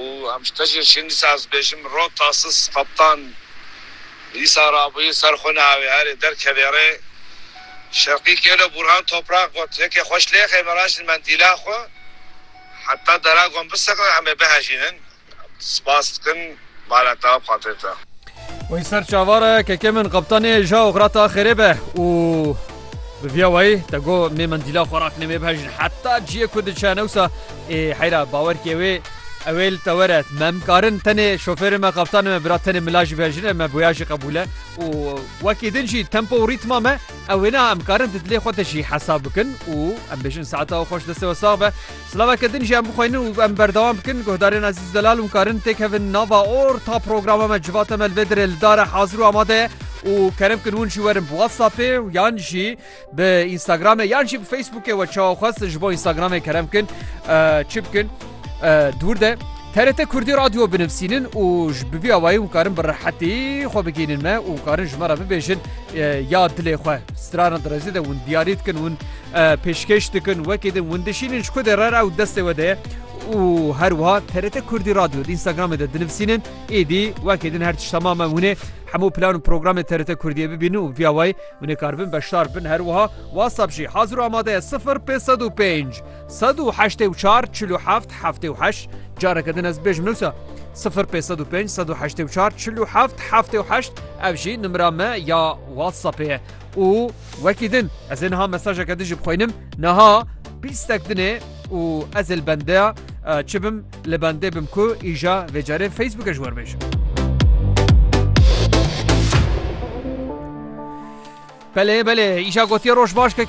Û em ji te jî şîn dîsa ez bêjim rot tasis qeptan dîsa rabûyî ser xwe neawê herê derkevê rê şerqî kêlo Bûrhan Topraq got yekê xweş lêxê mirajîn mendîla xwe heta deragon bisekne em ê bihejînin spas dikin. Mala ta xatir ta. Wî ser çavara keke min qeptanê ja oxra ta xêrê be û bi viya wayî te go mê mendîla xwe rakine mê bihejin heta ciyê ku diçe newsa ê heyra bawer kê wê ewê li te were me mikarin tenê şofêrê me qeptanê me bira tenê mila jî bihejine me boya jî qebûl e û wekî din jî tempo û rîtma me ewê na em karin di dilê xwe de jî hesab bikin û em bêjin saeta xweş destê we sax be Silaveke din jî em bixwînin û em berdewam bikin. Guhdarên Ezîz Delal û Karin têkevin nava orta programa me Civata me li vê dirê li dar e hazir û amade ye û kerem bikin hûn jî werin bi WhatsAppê û yan jî bi Instagramê yan jî bi Facebookê we çawa xwe siz ji bo Instagramê kerem bikin eh, çi bikin eh, dûr de TRT Kurdî Radyo binivîsînin û ji bi vî awayî hûn karin bi rehetî xwe bigihînin me û karin ji me re bibêjin eh, ya dilê xwe strana direzê de hûn diyarî dikin hûn pêşkêş dikin wekî din win dişînin ji ku de re ew destê we de ye û her wiha TRT Kurdî Radyo di Instagramê de dinivîsînin êdî wekî din her tişt temam e hûnê hemû plan û programê TRT Kurdiyê bibînin û via wayî hûn ê karibin beşdar bin her wiha WhatsApp jî hazir û amade ye sifir pê sed û pênc sed û heştê û çar çil û heft heftê û heşt careke din ez bêjim newsa sifir pê sed û pênc sed û heştê û çar çil û heft heftê û heşt ev jî nimira me ya WhatsAppê ye û wekî din ez ê niha mesajeke din jî bixwînim niha bîstek din ê û ez ê li bendeya çi bim li bendê bim ku îja vê carê Facebookê ji we bêjim. Belê belê îja gotiye roj baş keke